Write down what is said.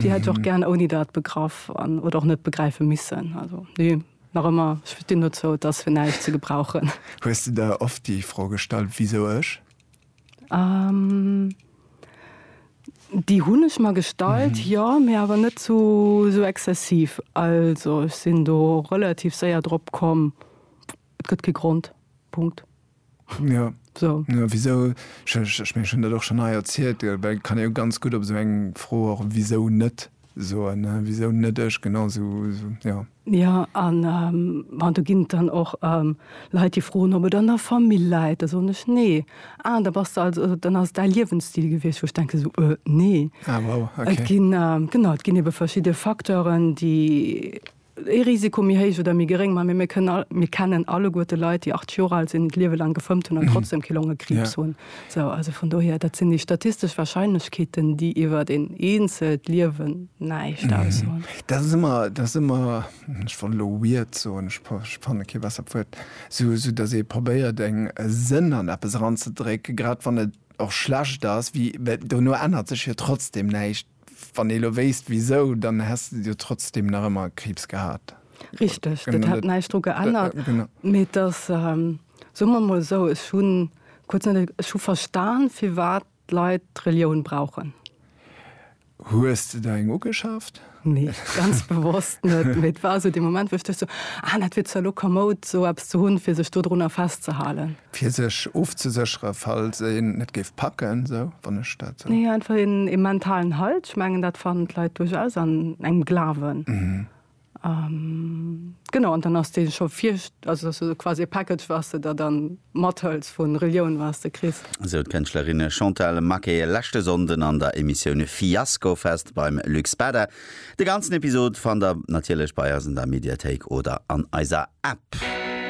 Déi hätt ech och gären ouni dat begraff an, oder och net begräife missen. Also nee, nach ëmmer, ech stinn dozou, et ass fir näischt ze gebrauchen. Hues de der oft déi Fro gestallt, Wisou ech? Déi hunn ech mer gestallt, jo, mee awer net zu esou exzessiv. Also ech sinn do relativ séier drop komm, et gëtt kee Grond. Punkt. Jo, wisou? Ech mengen, ech hunn dat och schonn hei erzielt, well kann ee jo ganz gutt op esou eng Fro och wisou net soen, wisou net ech, genau sou, jo. Jo, an bon, do ginn et dann och Leit, déi froen, ob et an der Famill läit. Da soen ech, Nee. Ah, da bass de also, dann ass et däi Liewensstil gewiescht. Wou ech denken esou, Nee. Ah, wow, okay. Et ginn, genau, et ginn ebe verschidde Facteuren, déi. ee Risiko méi héich oder méi geréng, mä mir kënnen all, mir kennen alleguer de Leit, déi 80 Joer al sinn, d'Liewe lang gefëmmt hunn an trotzdeem kee Longekriibs hunn. Sou, also vun dohier, dat sinn déi statistesch Warscheinlechkeeten, déi iwwert een eenzelt Liewen näischt aussoen. Dat ass ëmmer, dat ass ëmmer, ech wollt elo weird soen, ech fanne kee bessert Wuert, sou, sou datt ee probéiert eng, e Sënn an eppes eranzedrécken, grad wann et och schlecht ass, wéi, mä dono ännert sech jo trotzdeem näischt. Wann ee lo wéisst wisou, dann häss de jo trotzdem nach ëmmer Kriibs gehat. Richteg, dat hätt näischt dru geännert. Mee et ass, soe mer emol esou, ech hu kuerz net, ech hu verstan, firwat d'Leit d'Relioun brauchen. Hues de der eng ugeschaaft? Nee, ganz bewosst net. Mee et war esou dee Moment, wou ech duecht esou, ah, dat wier zwar lo komoud, esou eppes ze hunn, fir sech dodrunner festzehalen. Fir sech ofzesécheren, falls een et géif packen, esou, wann ech dat esou. Nee, einfach een, ee mentalen Halt. Ech mengen, dat fannen d'Leit duerchaus an engem Glawen. Genau, an dann ass dee scho vir, also dass du quasi e Package, was de der dann mathëls vu Relioun, was de kriss. Esou d'Kënschtlerin Chantal Maquet e leschte Sonnden an der Emissioun Fiaskofest beim Luc Spada. De ganzen Episod fannt der natierlech bei eis an der Mediathéik oder an eiser App.